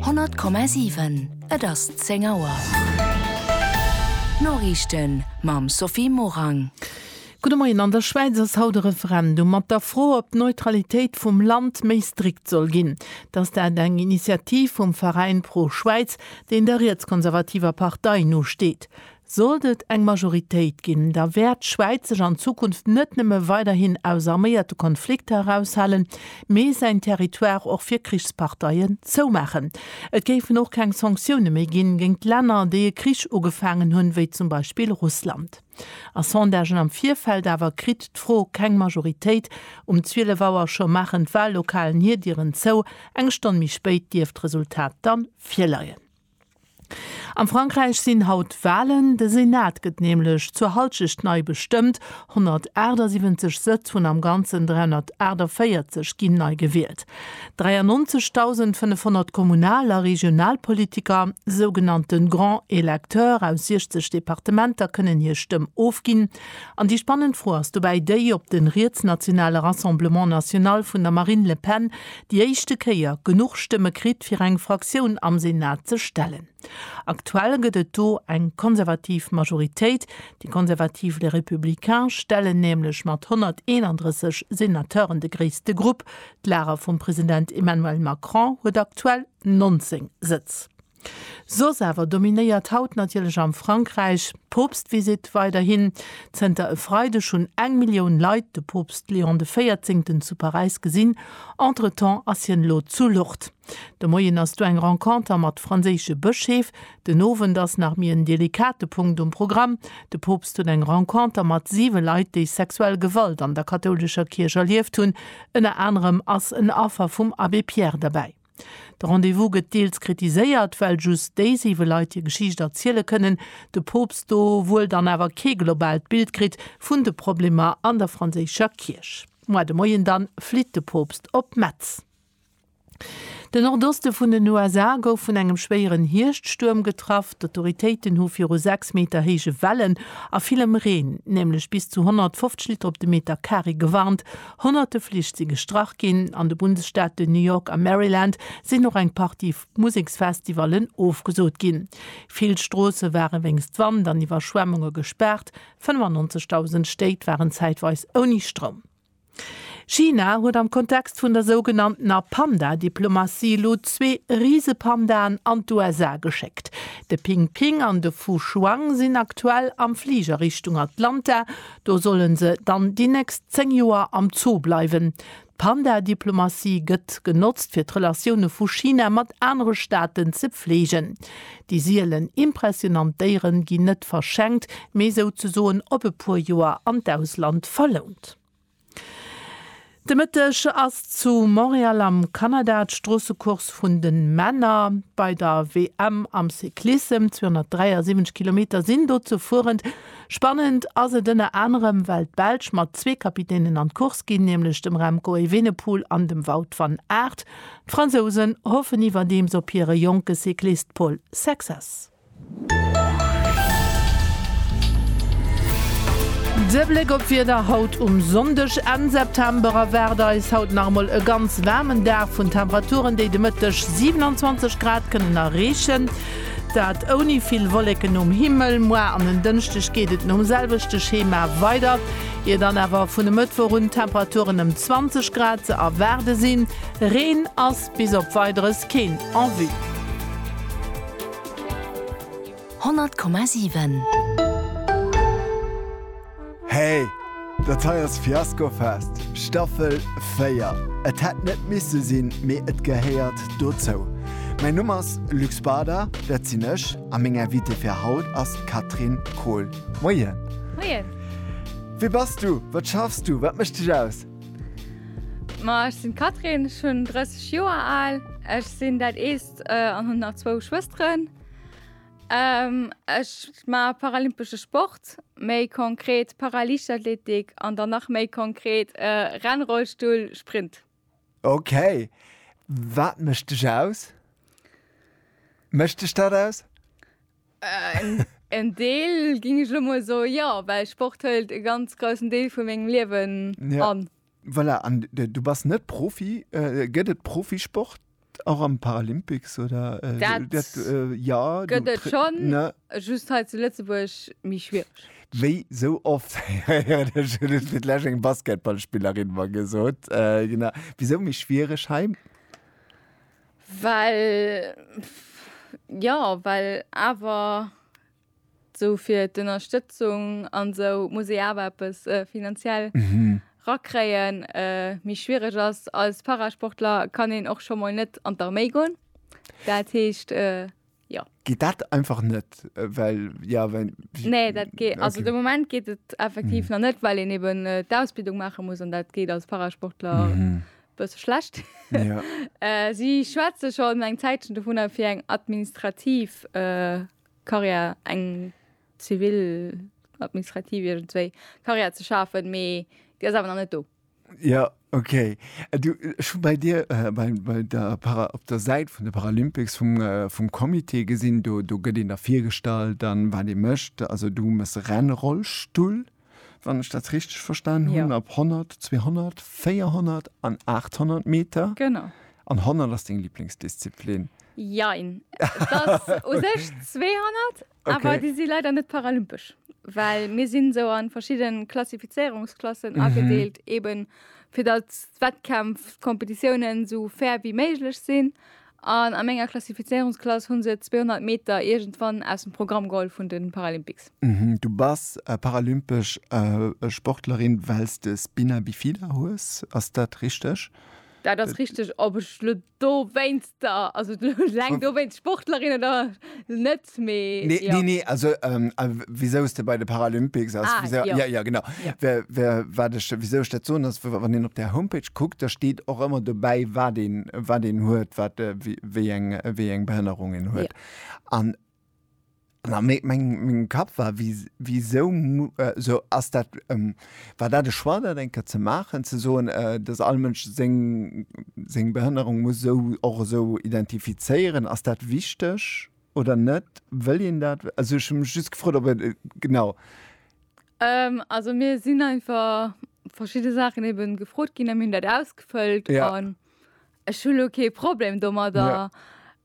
100,7 Et ass 10 Auer. D'Noriichten mam Sophie Morang. Gudde Moien. An der Schwäiz ass haut e Referendum mat der Fro, ob d'Neutralitéit vum Land méi strikt soll ginn. Et ass dat eng Initiativ vum Veräin Pro-Schwäiz, deen der rietskonservativer Partei nosteet. Sollt et eng Majoritéit ginn, da wäert d'Schwäiz sech an Zukunft net nëmme weiderhin aus arméierte Konflikter eraushalen, mee säin Territoire och fir Krichsparteien zoumaachen. Et géifen och keng Sanktioune méi ginn géingt Länner, déi e Krich ugefaangen hunn, wéi zum Beispill Russland. A Sondagen am Virfeld awer kritt d'Fro keng Majoritéit. Um 12 Auer scho maachen d'Wahllokalen hir Dieren zou, eng Stonn méi spéit dierft d'Resultat dann virleien. Am Frankräich sinn haut Walen. De Senat gëtt nämlech zur Halschecht nei bestëmmt. 178 Sëtz vun am Ganzen 348 ginn nei gewielt. 93.500 Kommunal a Regionalpolitiker, sougenannte Grands Electeurs, aus 60 Departementer kënnen hir Stëmm ofginn. An déi spannend Fro ass dobäi déi, ob de rietsnationale Rassemblement National vun der Marine Le Pen déi éischte Kéier genuch Stëmme kritt, fir eng Fraktioun am Senat ze stellen. Aktuell gëtt et do eng konservativ Majoritéit. Déi konservativ Les Républicains stellen nämlech mat 131 Senateuren de gréisste Grupp. D'Lager vum President Emmanuel Macron huet aktuell 19 Sëtz. Soss awer dominéiert haut natierlech am Frankräich d'Poopstvisitt weiderhin. Zënter e Freideg hunn eng Millioun Leit de Poopst Leon de Véierzéngten zu Paräis gesinn. Entretemps ass hien elo zu Lourdes. De Moien ass do eng Renconter mat franséische Bëscheef. Den Owend ass nach méi en delikate Punkt um Programm, De Poopst huet eng Renconter mat siwe Leit, déi sexuell Gewalt an der kathoulescher Kierch erlieft hunn. Ënner anerem ass en Affer vum Abbé Pierre derbäi. De Rendez-vous gëtt deels kritiséiert, well just déi siwe Leit hir Geschicht erziele kënnen, de Poopst do wuel dann awer kee globaalt Bild kritt vun de Problemer an der franséischer Kierch. Moi de Moien dann flitt de Poopst op Metz. Den Nordoste vun den USA gouf vun engem schwéieren Hierschtstuerm getraff. D'Autoritéiten hu viru 6 Meter héije Wellen a villem Reen, nämlech bis zu 150 Liter op de Meter Kare, gewarnt. Honnerte Flich si gestrach ginn, an de Bundesstaate New York a Maryland sinn och eng Partie Museksfestivallen ofgesot ginn. Vill Stroosse ware wéinst Wand an Iwwerschwemmunge gespaart, 95.000 Stéit waren zäitweis ouni Stroum. China huet am Kontext vun der sougenanntener Panda-Diplomatie elo zwee Risepandaen an d'USA geschéckt. De Ping Ping an de Fu Shuang sinn aktuell am Fliger Richtung Atlanta, Do sollen se dann déi nächst 10 Joer am Zoo bleiwen. D'Panda-Diplomatie gëtt genotzt fir d'Relatioune vu China mat anere Staaten ze pfleegen. Déi sielen impressionant Déiere ginn net verschenkt, mee souzesoen op e puer Joer an d'Ausland verlount. De Mëtteg ass zu Montréal am Kanada d'Stroossecourse vun de Männer bei der WM am Cyclissem. 273 Kilometer sinn do ze fueren. Spannend ass et ënner anerem, well d'Belsch mat zwee Kapitänen an d'Course ginn, nämlech dem Remco Evenepoel an dem Wout van Aert. D'Fransousen hoffen iwwerdeems op hire jonke Cyclist Paul Sexas. De Bléck op d'Wieder haut um Sonndeg, Enn September, erwaart eis haut nach emol e ganz waarmen Dag, vun Temperaturen, déi de Mëtteg 27 Grad kënnen erreechen, dat ouni vill Wolleken um Himmel. Moar an en Dënschdeg geet et nom selwechte Schema weider, ier dann awer vun e Mëttwoch un d'Temperaturen ëm 20 Grad ze erwaarde sinn. Reen ass Bis op Weideres keen en vue. 100,7. Hey, dat hei ass Fiasco Fest, Staffel 4. Et hätt net misse sinn, mee et gehéiert dozou. Mäin Numm ass Luc Bader, dat sinn ech, a meng Invitée fir haut ass d'Catherine Kohl. Moien. Moien. Wie bass du? Wat schaffs du? Wat mécht dech aus? Ma ech sinn d'Catherine, ech hunn 30 Joer al, ech sinn dat Eelst an hunn nach zwou Schwësteren. Ech ma paralympesche Sport, méi konkret Paraliichtathletik an dann nach méi konkret Rennrollstull Sprint. Ok, wat mécht dech aus? Mécht dech dat aus? En Deel ging ech lo mol so ja, well Sport hëlt e ganz groussen Deel vu mengem Liewen ja. an. Voilà, an du bass net Profi, äh, gëtt et Profisport och am Paralympics oder äh, dat, dat äh, ja, gëtt et schon, ne? just hei zu Lëtzebuerg méi schwiereg. Wéi sou oft fir lech eng Basketballspillerin war gesot äh, genau. Wisou méi schwiereg hei? Well, jo, well awer esou fir d'Ënnerstëtzung an esou muss ee awer eppes finanziell rakréien. Méi schwiereg ass, als Parasportler kann een och scho mol net an d'Arméi goen, dat heescht, Jo. Geet dat einfach net, well ja well. Nee, dat geet okay. also de Moment geet et effektiv mm. nach net, well en eben äh, d'Ausbildung maache muss an dat geet als Parasportler. Mm -hmm bësse schlecht. Ja. äh, si schwätze schon eng Zäitchen vun der fir eng administrativ äh, Karriere eng zivil administrativ zwei Karriere ze schafen, méi Dir awer net do. Ja, okay. Äh, du, ech hu bei dir äh, bei, bei der Para, op der Säit vun de Paralympics vum, äh, vum Comité gesinn, do, do gëtt een da virgestallt, dann wat ee mécht. Also du mëss Rennrollstull, wann ech dat richteg verstan hunn, ja. op 100, 200, 400 an 800 Meter. Genau. An 100 ass deng Lieblingsdisziplin. Jein. Dat u sech 200 Okay. Awer déi si leider net paralympesch, well mir sinn sou an verschidde Klassifizéierungsklassen mhm. agedeelt, eben fir dat Wettkämpf Kompetitiounen sou fair wie méiglech sinn. An a menger Klassifizierungsklass hunn se 200 Meter irgendwann aus dem Programm geholl vun den Paralympics. Mhm, du bass äh, paralympesch äh, äh Sportlerin, wells de Spina bifida hues, ass dat richteg? Dat ass richteg, ob ech do wéinst der also leng do wéinst Sportlerin oder net mee nee nee nee also ähm, wieso de bei de Paralympics ass ah, wieso, ja. ja ja genau ja. Wer, wer, wat ich, wieso dat so ass wann den op der Homepage guckt da steht och immer dobäi wat den wat den huet wat äh, wie, wie eng wie eng Behënnerung en huet ja. an An mengem Kapp war, Wisou ass dat, war dat e Choix, dat eng Kéier ze maachen, ze soen, dass all Mënsch seng Behënnerung muss och esou identifizéieren? Ass dat wichteg oder net? Wëll een dat? Also ech hu mech just gefrot, ob et genau. Also mir sinn einfach verschidde Saachen ebe gefrot ginn a mir hunn dat ausgefëllt. Ech hu lo kee Problem domadder. Ja.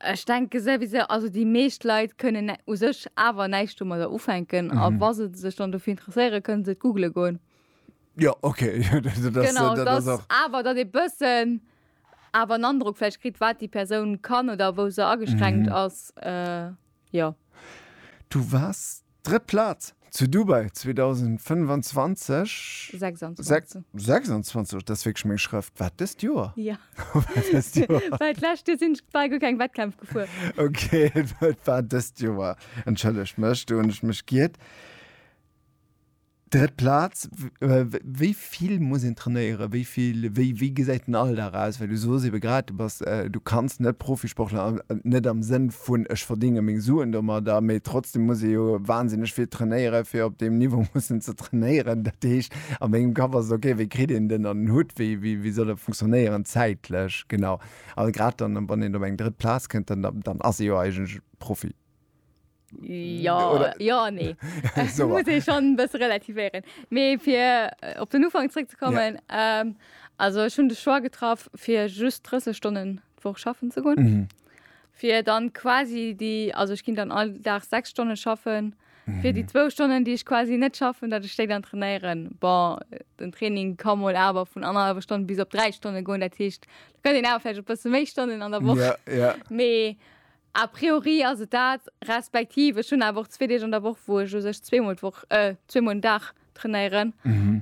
Ech denke souwisou, also déi meescht Leit kënnen nä- u sech awer näischt domadder ufänken. A Mhm. wa se sech dann dofir interesséieren, kënnen se et googele goen. Jo, okay. Jo, dat, dat ass, Genau, dat ass dass och. awer datt ee bëssen awer en Androck vläicht kritt, wat déi Persoun kann oder wou se ageschränkt Mhm. ass. Äh, jo. Du waars Drëtt Plaz zu Dubai 2025. 26. 26, dat ass wierklech meng Schrëft. War et dëst Joer? Jo. War et dëst Joer? Well d'lescht Joer sinn ech quasi guer keng Wettkämpf gefuer. Ok, et war dëst Joer. Entschëllegt mech, do hunn ech mech giert. Drëtt Plaz, wéi vill muss een trainéieren, wéi vill, wéi gesäit den Alldag aus? Well du soos ebe grad, du bass, du kanns net Profisportler, net am Sënn vun ech verdénge meng Suen domadder, mee trotzdem muss ee jo wahnsinneg vill trainéieren, fir op deem Niveau mussen ze trainéieren. Dat heescht a mengem Kapp ass et ok, wéi kritt een den an den Hutt, wéi soll e funktionéieren zäitlech genau? A grad dann, wann een op eng drëtt Plaz kënnt, dann ass ee jo eigentlech Profi. Ja, Oder- ja, nee. So, muss ich schon ein bisschen relativieren. Mir für äh, auf den Anfang zurückzukommen, ähm, also schon den Choix getroffen, für just 30 Stunden die Woche schaffen zu gehen. Mhm. Für dann quasi die, also ich ging dann all Tag sechs Stunden schaffen. Für Mhm. die zwei Stunden, die ich quasi nicht schaffen, dass ich die dann trainieren. Bon, den Training kann mal aber von anderthalb Stunden bis auf drei Stunden gehen. Das heißt, da könnt ihr aber vielleicht ein bisschen mehr Stunden an der Woche. Ja, ja. Mee A priori ass et dat, respektiv ech hunn awer och zwee Deeg an der Woch, wou ech u sech zweemol d'Woch, zweemol den Dag trainéieren.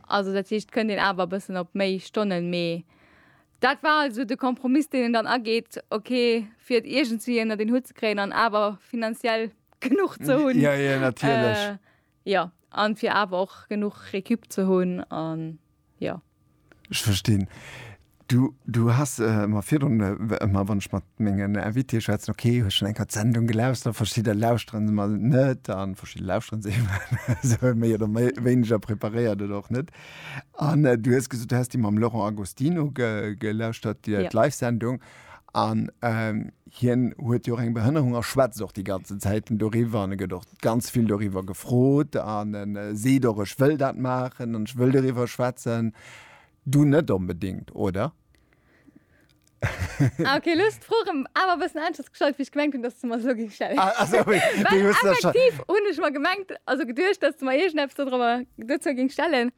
Also dat heescht, kënnt een awer e bëssen op méi Stonnen. Mee dat war alt esou de Kompromiss, deen een dann ageet, ok, fir et iergendwéi ënnert een Hutt ze kréien an awer finanziell genuch ze hunn. Jo, jo, natierlech. Jo, an fir awer och genuch Récup ze hunn an jo. Ech verstinn. Du, du has mer virdrun ëmmer, wann ech mat mengen Invitéë schwätzen, ok, hues schonn eng Kéier d'Sendung gelauschtert, verschidder lauschteren se emol net an verschidder lauschteren se emol méi oder wéineger preparéiert oder och net. An du hues gesot, du häss déi mam Laurent Agostino gelauschtert, déi Live-Sendung. An hien huet jo och eng Behënnerung a schwätzt och déi ganzen Zäiten doriwwer an e gëtt och ganz vill doriwwer gefrot an e seet och, ech wëll dat maachen an ech wëll doriwwer schwätzen. Du net onbedéngt, oder? Ah okay, elo hues du d'Fro erëm awer e bëssen aneschters gestallt, wéi ech gemengt hunn, datt s du mer se elo géif stellen. Ah sou, wéi du hues der scho. Well effektiv hunn ech mer gemengt, also geduecht, datt s du mer iergendeppes dodrobber dozou géings stellen.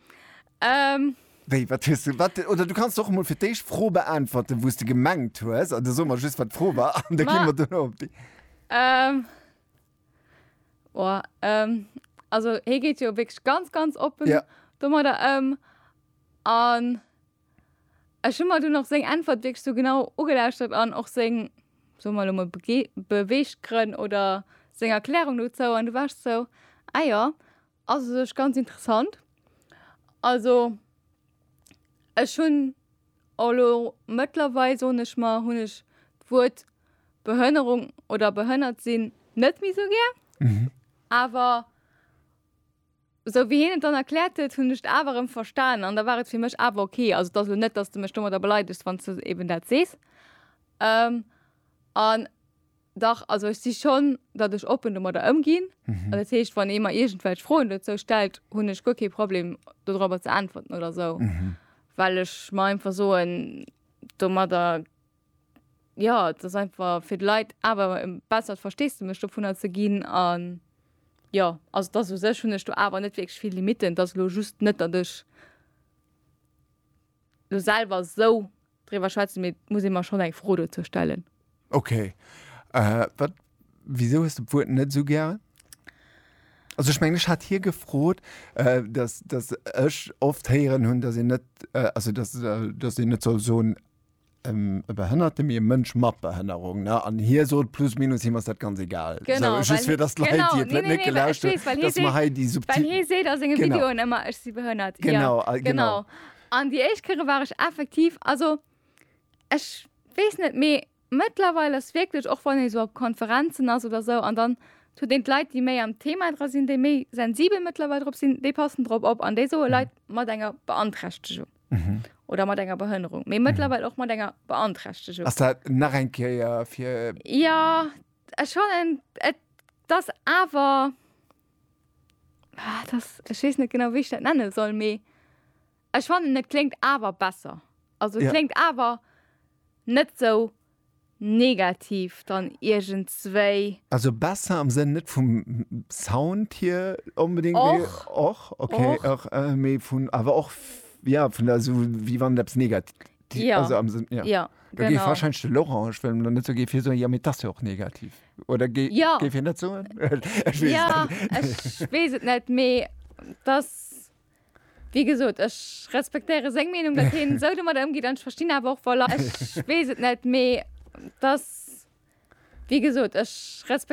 Ähm. Wéi, wat hues du, wat, oder du kanns och mol fir d'éischt d'Fro beäntwerten, wou s de gemengt hues, an da soe mer just, wat d'Fro war, an da gi mer duerno op déi. Ähm. Oh, ähm, also hie geet jo wierklech ganz, ganz oppen. Ja. Domadder ëm. An ech hu mer dunn och seng Äntwert wierklech sou genau ugelauschtert an och seng, soe mer elo mol, Bege, Beweeggrënn oder seng Erklärung dozou. An du war ech sou, Ah jo, Ass u sech ganz interessant. Also ech hunn elo mëttlerweil, soen ech mer, hunn ech d'Wuert Behënnerung oder behënnert sinn net méi esou gär. Awer esou wéi hien et dann erkläert huet, hunn ech et awer erëm verstanen an da war et fir mech awer ok. Also et ass elo net, datt s de mech domadder beleidegst, wann s de eben dat sees. An Dach, also ech si schonn, datt ech oppen domadder ëmginn. Dat heescht, wann ee mer iergendwelch Froen dozou stellt, hunn ech guer kee Problem dodrobber ze äntwerten oder esou, well ech mer einfach soen, domadder, jo, et ass einfach fir d'Leit awer e bessert Versteesdemech dovunner ze ginn. A jo, also et ass u sech, hunn ech do awer net wierklech vill Limitten. Et ass elo just net, datt ech elo selwer esou driwwer schwätzen, mee et muss ee mer schonn eng Fro dozou stellen. Ok. Wat, wisou hues de d'Wuert net esou gär? Also ech mengen, ech hat hie gefrot, dass, dass ech oft héieren hunn, dass een net, also dass, dass een net soll soen e Behënnerte, mee e Mënsch mat Behënnerung, ne? An hie sot plus minus, him ass dat ganz egal. Genau, well, just fir dass d'Leit, déi et net, net gelauscht hunn, dass mer hei déi subtil. Well hie seet a senge Videoen ëmmer, ech si behënnert. Genau, genau. An déi éischt Kéiere war ech effektiv, also ech weess net, mee mëttlerweil ass wierklech, och wann ee sou op Konferenzen ass oder sou an dann huet een d'Leit, déi méi am Thema dra sinn, déi méi sensibel mëttlerweil drop sinn, déi passen drop op an déi soe Leit mat enger Beanträchtegung oder mat enger Behënnerung, mee mëttlerweil och mat enger Beanträchtegung. Ass dat nach eng Kéier fir. Jo, ech fannen, et ass awer. Ah, das, ech wees net genau wéi ech dat nenne soll mee ech fannen et kléngt awer besser. Also ja. kléngt awer net sou negativ dann irgend zwéi. Also besser am Sënn net vum Sound hier unbedingt och, och okay och, och äh, mee vun awer och ja vun der so wie wann dat negativ Die, ja. Also am Sinn, ja. ja da genau. wahrscheinlich den Laurent, ich will net so gefir so ja mit das ja auch negativ oder ge ja. ge net so ja, wees het net me das wie gesot ech respektéiere seng Meinung dat hin sou du mat ëmgi dann verstinn awer och voll ech wees het net me das wie gesot ech respektéiere